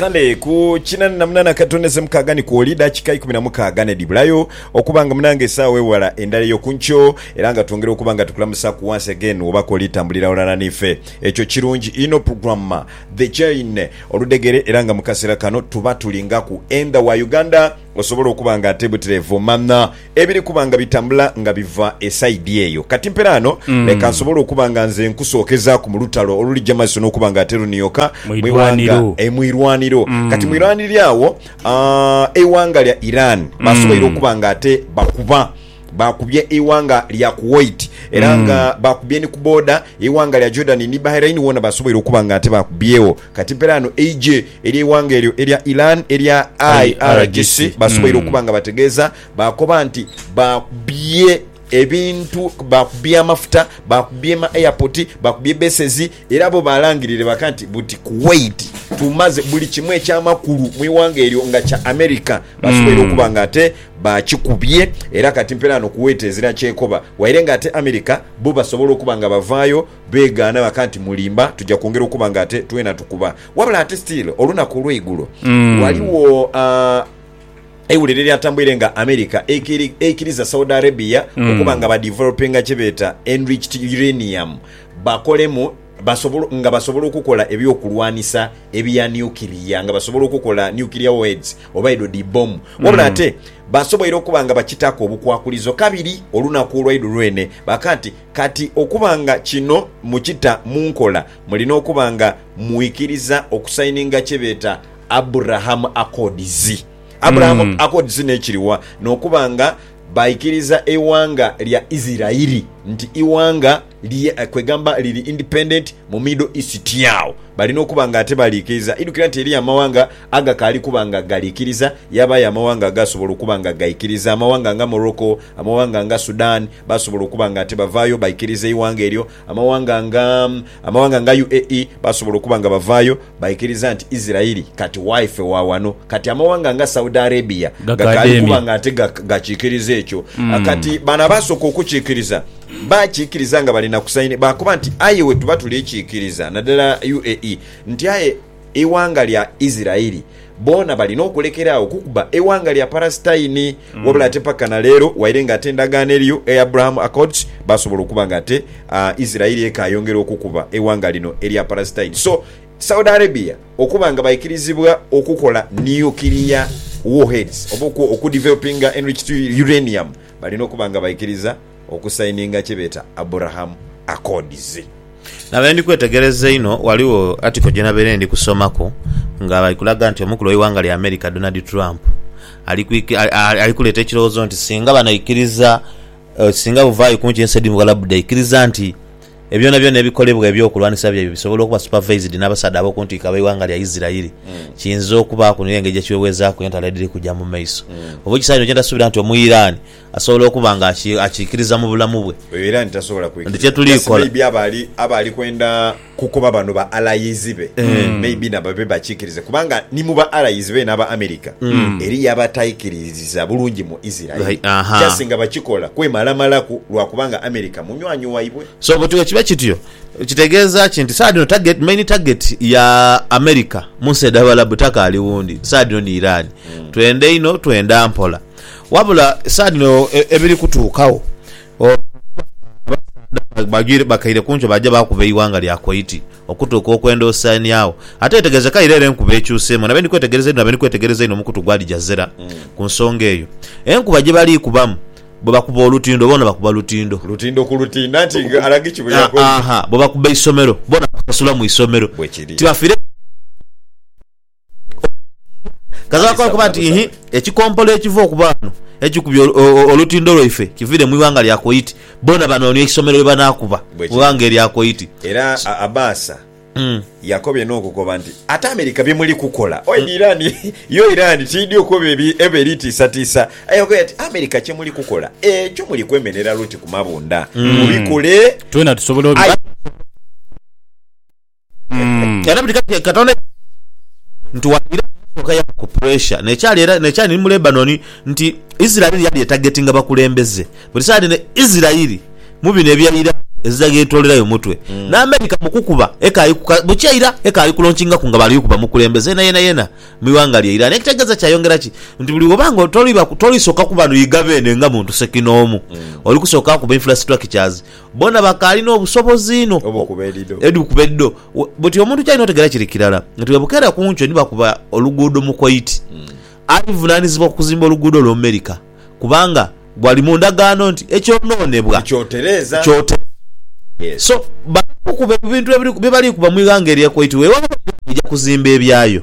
Kale ku kinani na munana akatondeze mukaaga ni kwoli dakika ikumi na mukaaga nedibulayo okuba nga munange esaawa ewala endala eyo kunkyo era nga twongera okuba nga tukulamusaku once again wobako olitambulira ghalala nife ekyo kirungi inho programmer the chain oludegere era nga mukasera kano tuba tulingaku endha wa Uganda Osobola okuba nga ate butirevu manha ebiri kuba nga bitambula nga biva esaidi eyo. Kati mpera ghano leka nsobole okuba nga nze nkusookezaaku mu lutalo olulija mu maiso n'okuba nga ate lunioka Mu mu ighanga irwaniro. e, mu irwaniro. Kati mu irwaniro agho, aa, eighanga lya Iran basoboire okuba nga ate bakuba. Baakubye eighanga lya Kuwait era mm. nga baakubye ni ku booda eighanga lya Jordan ni Bahrain woona basoboire okuba nga ate baakubyegho. Kati mpera ano eije ery'eighanga eryo erya Iran erya IRGC basoboire mm. okuba nga bategeeza baakoba nti baakubye ebintu bakubye amafuta bakubye ma airport bakubye besezi era bo balangirire baka nti buti kuwait tumaze buli kimu ekyamakulu mu iwanga eryo nga kya america basoboire mm. okuba nga ate Baakikubye era kati mperaano kuweeta ezira kyekoba, waire nga ate America bo basobola okuba nga bavaayo begaana baka nti mulimba tuja kwongera okuba nga ate twena tukuba. Wabula ate still olunaku olweigulo waliwo aah eiwulire eryatambuire nga America eikiriza Saudi Arabia okuba nga ba developinga kyebeeta enriched uranium bakolemu basobola, nga basobola okukola eby'okulwanisa ebya niukiria, nga basobola okukola nuclear warheads oba edho dhi bbomu. Wabula Mm. ate basoboire okuba nga bakitaaku obukwakulizo. Kabiri, olunaku olwaidu lwene baaka nti, Kati okuba nga kino mukita mu nkola, mulina okuba nga mwikiriza okusayininga kye beeta Abraham Accords. Abraham Mm. Accords n'ekiri wa? N'okuba nga baikiriza eighanga lya Isirairi nti ighanga, kwegamba liri independent mu Middle East agho balina okuba nga ate baliikiriza. Idhukira nti eriyo amawanga agakaali kuba nga galiikiriza, yaabaayo amawanga agaasobola okuba nga gaikiriza. Amawanga nga Morocco, amawanga nga Sudan baasobola okuba nga ate bavaayo baikiriza eighanga eryo. Amawanga nga, amawanga nga UAE baasobola okuba nga bavaayo Baikiriza nti Isiraeli kati waife wa wano. Kati amawanga nga Saudi Arabia gakaali kuba nga ate gakikiriza ekyo. Kati bano abaasooka okukikiriza baakikiriza nga bali na kusaini, baakoba nti aye wetuba tuli kikiriza, nadala UAE, nti aye eighanga lya Isiraeli. Boona balina okulekera agho okukuba eighanga lya Palasitaini. Wabula ate paka na leero, waire nga ate endagaano eriyo eya Abraham Accords, baasobola okuba nga ate Isiraeli ekaayongera okukuba eighanga lino erya Palasitaini. So, Saudi Arabia okuba nga baikirizibwa okukola nuclear warheads oba okudevelopinga enriched uranium, balina okuba nga baikiriza. okusayininga kye beeta Abraham Accords. Nabaire ndi kwetegereza einho, ghaligho article gye nabaire ndi kusomaku nga bali kulaga nti omukulu w'eighanga lya America Donald Trump ali kuleeta ekirowoozo nti singa banaikiriza, singa buvaayo ku nsi edh'omu Bughalabu dhaikiriza nti ebyonabyona ebikolebwa eby'okulwanisa byaibwe bisobola okuba supervised n'abasaadha ab'oku ntikko ab'eighanga lya Isirairi, kiyinza okubaaku n'engeri gye kiweweezaaku entalo edhiri kuja mu maiso. Oba ekisaawe kino kye ntasuubira nti Omuiraani Asobola okuba nga akiikiriza mu bulamu bwe. Oyo era nti tasobola kwikiriza. Just maybe aba ali aba ali kwenda kukoba bano ba allies be maybe na babe bakikirize kubanga ni mu ba allies beene aba America eriyo abataikiririza bulungi mu Israel just nga bakikola kwemalamalaku lwa kubanga America munywanyi waibwe. So bwe bwe kiba kityo kitegeeza ki nti saagha dhino target main target ya America mu nsi edh'Abarabu takaali wundi, saagha dhino ni Iran. Twenda inho, twenda mpola. Wabula esaa dhino ebiri kutuukawo abasaadha bano bakaire ku ncho baaja baakuba eighanga lya Koiti okutuuka okwenda osaaniagho. Ate wetegezeka ira era enkuba ekyuseemu nabe ndi kwetegereza inho nabe ndi kwetegereza inho omukutu gwa Aljazera ku nsonga eyo. Enkuba gye bali kubamu bwe bakuba olutindo boona bakuba lutindo. Lutindo ku lutindo anti nga Alagiki bwe yakoze. Haa bwe bakuba isomero boona bakusasula mu isomero. Bwe kiri. Tibafiire. Kaziraku okuba nti ihi ekikompolo ekiva okuba ghano ekikubye olutindo lwaife kiviire mu ighanga lya Koiti. Boona banoonia eisomero ye banaakuba mu ighanga erya Koiti. Era Abaasa yakobye n'okukoba nti, Ate America bye muli kukola oidhi Iran yo Iran tiidhi okoba ebe eri tiisatiisa. Aye akogera ati, America kye muli kukola ekyo muli kwemenhera luti ku mabundha. Mubikole aye. Mm. Era buli kati Katonda nti waira yasooka yaba ku pressure nekyali era nekyali ni mu Lebanon nti Israel yali etagetinga bakulembeze buli saidi ne Israel mu bino ebya Iran ezidaga etolerayo mutwe ne America mu kukuba ekali ku ka- bukya ira ekali ku launchingaku nga bali kuba mukulembeze yena yena yena mu iwanga lye Iran ekitegeza kyayongera ki nti buli woba nga toliba tolisoka kuba noyiga bene nga muntu sekinoomu oli kusoka kuba infrastructures Bona bakaali n'obusobozi inho obukuba edhido. Buti omuntu kyalina otegeera kiri kirala nti bwe bukeera ku nkyo ni bakuba oluguudo mu Kuwaiti, alivunaanizibwa ku kuzimba oluguudo olw'omu Merika kubanga bwali mu ndagaano nti ekyonoonebwa kyotereezebwa. So, bali kukuba ebintu bye bali kukuba mu ighanga erya Kuwaiti. Weewaawo Uganda eja kuzimba ebyayo.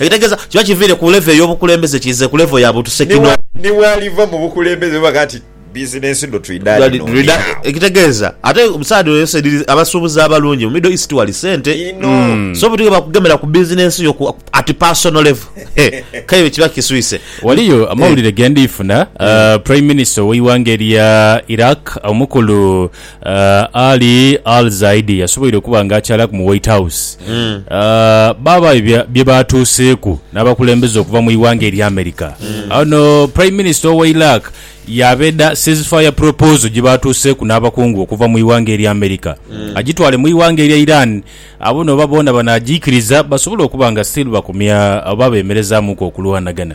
Ekitegeeza kiba kiviire ku levo ey'obukulembeze kiize ku levo ya butusekinoomu. Ni bw'aliva mu bukulembeze ni baga nti, Bizinensi dho twidha dhino ndi agho. Ekitegeeza ate saidi eyo saidi abasuubuzi abalungi mu Middle East wali sente. Inho. So omuntu yenna bwakugemera ku bizinensi yo ku at personal level, he, kale ebyo kiba kiswise. Waliyo amawulire ge ndiifuna, Prime Minister ow'eighanga erya Iraq, Omukulu Ali al-Zaidi yasoboire okuba nga akyalaku mu White House, baabayo bye baatuuseeku n'abakulembeze okuva mu ighanga erya America. Ono Prime Minister owa Iraq yaabeda ceasefire proposal gye baatuuseeku n'abakungu okuva mu ighanga erya America agitwale mu ighanga erya Iran abone oba boona banaagiikiriza basobole okuba nga still bakomya oba beemerezaamuku okulwanagana.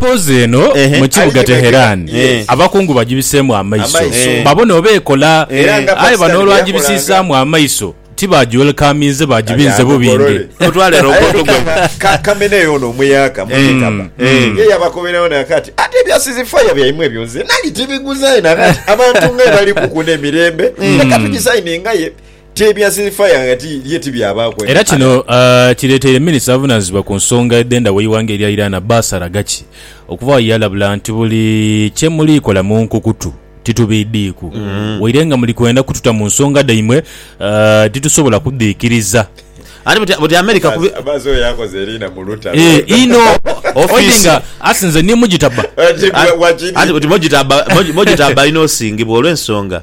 Poozi eno Ehe. mu kibuga Alikighagira. Teherani, Eh. abakungu bagibiseemu amaiso, Amaiso. Eh. babone oba ekola. Era nga Aye Pakistan bano olwagibisiisaamu amaiso, ti baagiwelkaminze, baagibinze bubinge. Mutwale roboto gwe. Ka- kamene eyo ono omuyaaka mutikaba mm. ye yabakoberewo nakati ate ebya sizifaya byaimwe ebyo nze nali tibiguzaye nakati abantu nga bali kukuna emirembe leka tugisayiningaye Ti ebya silifaya nga ti ye ti byabaaku eno. Era kino kireteire minisita avunanizibwa ku nsonga edhendha weighanga erya Iran Abbas Araghachi okuvaawo yeyalabula nti buli kyemuliikola munkukutu titubiidhiiku waire nga muli kwenda kututa mu nsonga dhaimwe titusobola kudhiikiriza. Abbas oyo akoze eriina mu lutalo. Eeh inho oidhi nga asi nze ni mujitaba. Anti mojitaba alina osingibwa olwensonga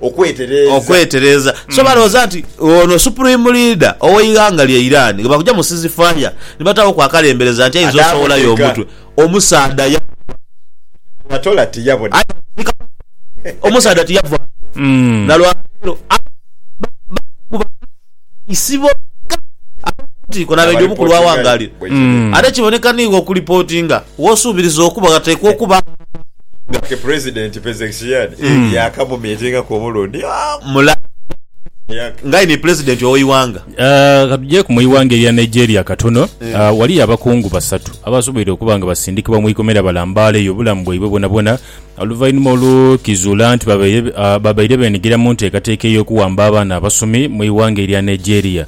okwetereeza. So balowooza nti ono Supreme Leader ow'eighanga lya Iran ghebakugya mu ceasefire nibataaghoku akalembereza nti aidha osowolayo omutwe. Omusaadha yaboneka aye baamuzika mu Iran. Omusaadha tiyavaayo na lwa leero. Abakungu ba Poliisi boka ab'oku ntikko n'abeidhi omuku lw'awangaalira ate kiboneka niigho okulipotinga. W'osuubiriza okuba ghateekwa okuba. Nga ke Pulezidenti Pezeshkian yaakamumiitingaku omulundi mulala Yag. Ng'aini Pulezidenti ow'eighanga. Ka tujeeku mu ighanga erya Nigeria katono, ghaliyo abakungu basatu abasoboire okuba nga basindikibwa mu ikomera balambaaleyo obulamu bwaibwe bwonabwona Oluvainhuma olwo kizuula nti babaire beenhigira mu nteekateeka ey'okuwamba abaana abasomi mu ighanga erya Nigeria.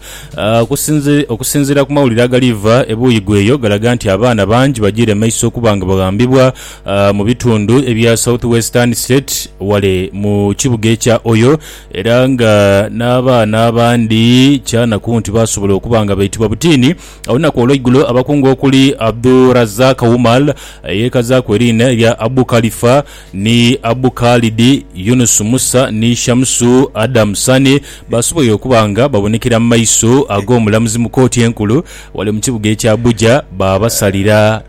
Okusinziira ku mawulire agaliiva ebuuyi bw'eyo galaga nti abaana bangi bajiire maiso okuba nga baghambibwa mu bitundu ebya South Western State ghale mu kibuga ekya Oyo era nga n'abaana abandi kyanaku nti baasobola okuba nga baitibwa butiini Olunaku olweigulo abakungu okuli Abdul-Razak Umar eyekazaaku eriina erya Abu Khalifa ni Abu Khalid, Yunus Musa ni Shamsu Adam Sani basoboire okuba nga babonekera mu maiso ag'omulamuzi mu kooti enkulu wale mu kibuga ekya Abuja baabasalira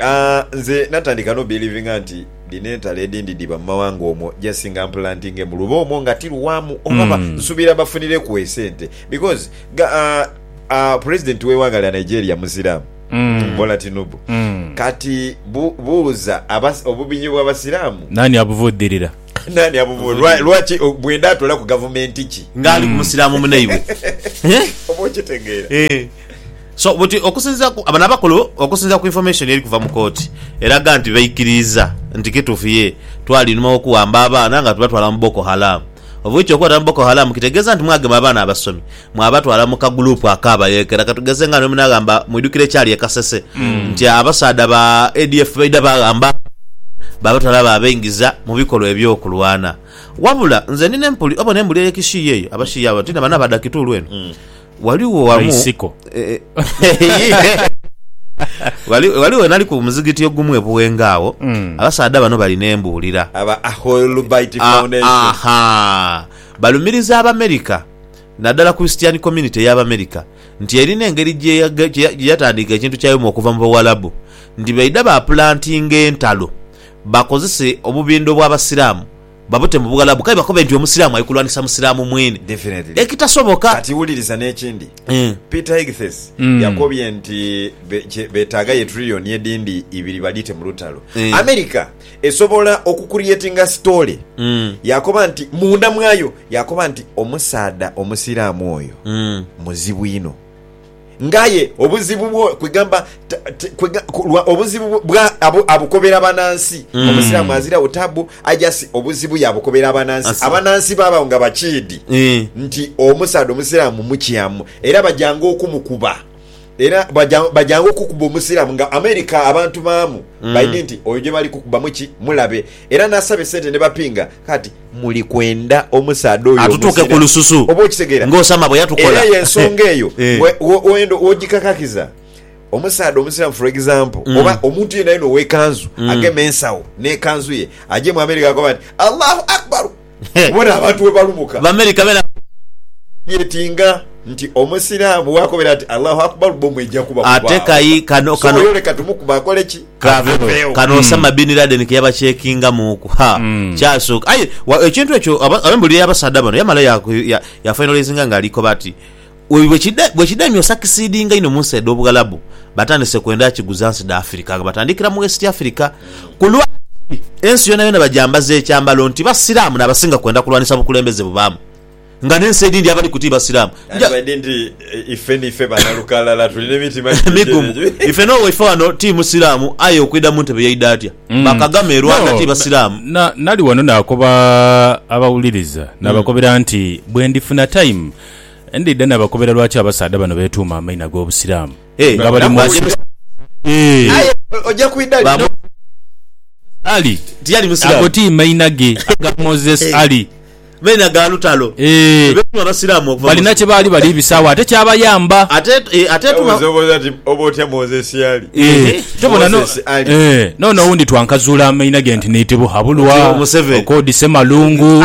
Aah nze natandika no belivinga nti dhino entalo edindi dhiba mumawanga omwo just nga mpulantinge mu luba omwo nga tiluwamu oba nsubira bafunireku esente because ga aah president wewanga lya Nigeria musiramu Bola Tinubu kati bu buuza obubinyo bwa basiramu Nani abuvudhirira? Nani abuvudhirira? Lwaki bwenda atolaku gavumenti ki nga ali kumusiramu munaibwe oba okitegeera. So buti okusinzira ku bano abakulu, okusinzira ku information eri kuva mu kooti eraga nti baikiriiza nti kituufu yee twali inhuma w'okuwamba abaana nga tubatwala mu Boko Haram. Of which okubatwala mu Boko Haram kitegeeza nti mwagema abaana abasomi mwabatwala mu ka group ak'abayeekera katugeze nga niwe munaghamba mwidhukire ekyali e Kasese nti abasaadha ba ADF baidha baghamba abaana baabatwala baabaingiza mu bikolwa eby'okulwana. Wabula nze ndi n'empuli, oba n'embuli eye Kishii eyo, Abashii abo, nti na bano abadha Kitulu eno. Ghaligho wamu Baisiko. Ghali- ghaligho nali ku muzigiti ogumu e Buwenga agho Mm. abasaadha bano bali n'embuulira Aba Ahoilubite Ah, Foundation. aha. balumiriza abamerika naddala christian community ey'abamerika nti erina engeri gye- gye- gye gye yatandiika ekintu kyayomu okuva mu bawalabu nti baidha bapulantinga entalo bakozese obubindo bw'abasiraamu Babute mu Buwalabu kale bakobe nti Omusiraamu ali kulwanisa Musiraamu mwene Definitely. ekitasoboka. Kati wuliriza n'ekindi. Eeh. Peter Hegseth yakobye nti be, kye beetaaga ye trillion edindi ibiri badhiite mu lutalo. Eeh. America esobola okucreatinga sitoole. Yakoba nti munda mwayo, yakoba nti, Omusaadha Omusiraamu oyo muzibu inho. ng'aye obuzibu bwo kwegamba ta- t- kwega- ku- lwa obuzibu bwo- bwa abu- abukobera banansi Mm. omusiraamu azirawo tabu ajasi obuzibu yabukobera abanansi Asi- abanansi babawo nga bakiidi Eh. nti omusaadha omusiraamu mukyamu era bajanga okumukuba era baja- bajanga okukuba omusiraamu nga america abantu baamu Mm. baidhi nti oyo gyebali kukubamu ki mulabe Era n'asaba esente ne bapinga. Kati muli kwenda omusaadha oyo Atutuuke ku omuzira? lususu Oba okitegeera? ng'Osama bwe yatukola. Era y'ensonga eyo Eh. we- wo- w'oyenda w'ogikakakiza. Omusaadha omusiraamu for example Mm. oba omuntu yenayena ow'ekanzu Mm. ageme ensawo n'ekanzu ye agyemu abeere g'akoba nti Allahu Akbar Obona abantu bwe balubuka. Bamerica bena bafogetinga nti Omusiraamu bwakobera nti Allahu Akbar bbomu eja kuba kubaawo. Ate kayi kano kano. So oyo leka tumukube akole ki? Aveewo. Kano Osama Bin Laden ke yabacekingamuuku, ha, kyasooka. Aye ekintu ekyo abembulire y'abasaadha bano yamala ya finalizinga ng'ali koba ati. Bwe kidhaimya osakisidinga inho mu nsi edh'Obughalabu, batandise kwenda akiguza nsi dha Afirika nga batandikira mu West Afirika. Ku lwa kiri, ensi yonayona bagyambaza ekyambalo nti Basiraamu n'abasinga kwenda kulwanisa bukulembeze bubaamu nga n'ensi edhindi abali ku ti Basiraamu. Ife n'owaife wano ti Musiraamu aye okwidha mu ntebe yaidha atya? Ba Kagame e Rwanda ti Basiraamu. Ndidha nabakobera lwaki abasaadha bano betuuma amaina gobusiramu nga bali munsi eeh. Ali ago ti maina ge aga Moses Ali eeh balina kyebaali bali bisaawo ate kyabayamba eeh tobona no eeh noono owundi twankazuula amaina ge nti niiti Buhabulwa, Okoodi Semalungu.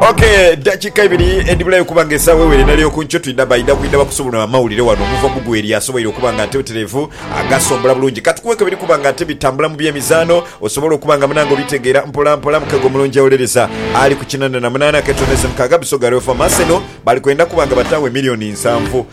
Ok, dakika ibiri edibulayo okuba nga esawa ewere nali okunkyo twidha baidha kwidha bakusubula amawulire wano omuva mugweri asoboire okuba nga ateterevu agasombola bulungi katukuweko ebiri kuba nga ate bitambula mu byemizano osobole okuba nga munange obitegera mpola mpola mukego mulungi awolereza ali ku kinana na munana ketoneze mukaga Busoga Real Farm Arsenal bali kwenda kuba nga batawo emiliyoni nsanvu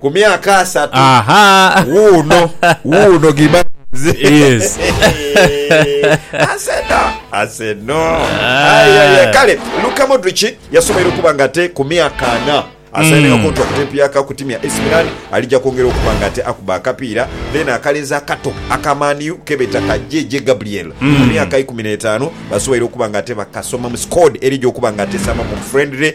Ku myaka asatu. Ahaa. Wuuno, wuuno gimba nze. Yes. Aseno, aseno. Aye, aye. Kale, Luka Modric yasoboire okuba nga ate ku myaka ana asainegho kontulakiti Hmm. empya ka ku tiimu ya AC Milan, alija kwongera okuba nga ate akuba akapiira. Then akalenzi akato aka Man U kebeeta ka JJ Gabriel, ku Hmm. myaka ikumi n'etaanu, basoboire okuba nga ate bakasomamu squad erija okuba nga ate esaamaku friendly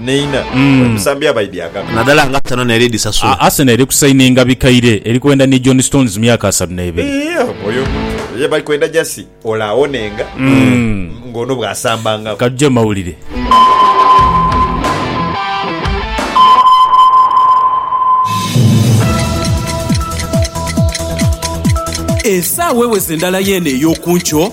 Neina emisambi abaidhi agano. Nadala nga Arsenal neri disasula. Arsenal eri ku sayininga bikaire, eri kwenda ni John Stones myaka asatu n'ebiri. Oyo omuntu ye bali kwenda jasi ole awonenga nga ono bwasambangagho. Ka tuje mu mawulire. Esaawa eweze ndala yeene ey'oku nkyo.